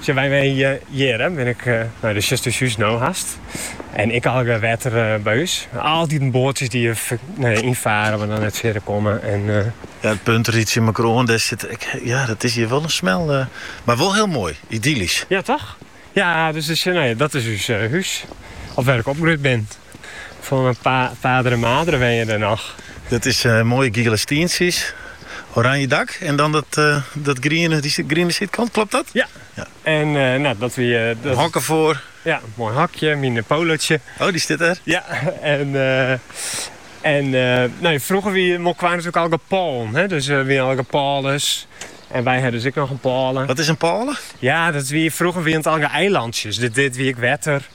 Sjen wy mei hjir, bin ik nei dat is ús hús no hast. En ek allegear wetter by ús. Altyd in boatsjes dy't hjir ynfarre mar dan net fierder komme. En, ja, it punt ried tsjin mekoar oan. Dêr sit ek, ja, dat is hjir wol in smel. Mar wol hiel moai, idyllysk. Ja, toch? Ja, dus dat is ús hús. Of wêr ik opgroeid bin. Fan myn fader en mader wenje der noch. Dat is moaie giele stientsjes, oranje dak en dan dat griene, dy griene sydkant, klopt dat? Ja. Ja. En nou, dat wie dat. In hokje foar. Ja, moai hokje, myn Polootsje. Oh, dy stiet der? Ja, en en nou, frûger wie Molkwar natuerlik allegear pôlen, hè, dus der wie allegear pôles. En wy hienen dus ek noch in pôle. Wat is in pôle? Ja, dat wie, frûger wie it allegear eilantsjes. Dit, dit wie ek wetter.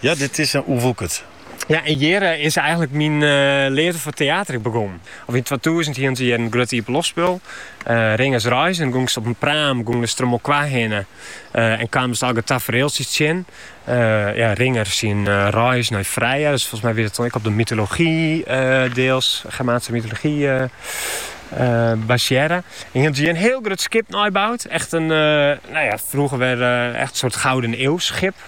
Ja, dit is oerwoekerd. Ja, en hjir is eigenlik myn leafde foar teater ek begûn. Of yn twatûzen hienen se hjir in grut iepenloftspul, Ringers Reis, en gongst op in praam gongst troch Molkwar hinne en kaamst allegear tafereeltsjes tsjin. Ja, Ringer syn reis nei Freya, dus folgens my wie dat dan ek op de mytology deels, Germaanske mytology, basearre. En hienen se hjir in hiel grut skip neiboud, echt in, no ja, frûger wie echt in soart gouden eeuwsskip.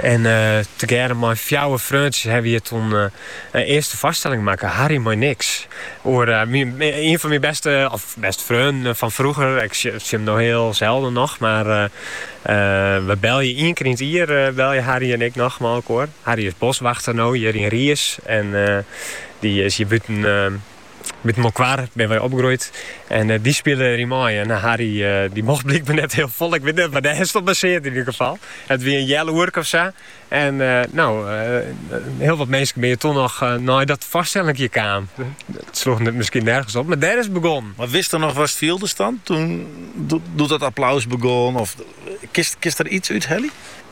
En tegearre mei fjouwer freontsjes ha we hjir toen in earste foarstelling makke, Harry mei niks. Oer ien fan myn bêste, of bêste freonen fan frûger. Ik sjoch him no hiel selden noch, mar we belje ien kear yn it jier belje Harry en ik noch mei elkoar. Harry is boswachter no hjir yn Riis en dy is hjir bûten By Molkwar binne wy opgroeid en dy spile der yn mei. En Harry dy mocht blykber net hiel folle, ik wit net, mar dêr is 't op basearre yn ieder gefal. It wie in healoerke of sa. En no, hiel wat minsken binne toen noch nei dat foarstellinkje kaam. It sloech net miskien nergens op, mar dêr is it begonnen. Mar witste noch watst fieldest dan, doe't dat applaus begûn of kinst der iets út helje?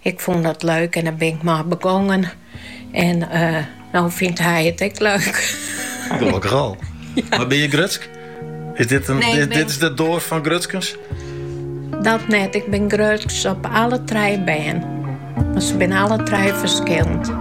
Ik fûn it leuk en dêr bin ik mei begongen. En no fynt hy it ek leuk. Gelokkich al. Mar bin je grutsk? Is dit, in, nee, dit, is de doas fan grutskens? Dat net. Ik bin grutsk op alle trije bern. Mar se binne alle trije ferskillend.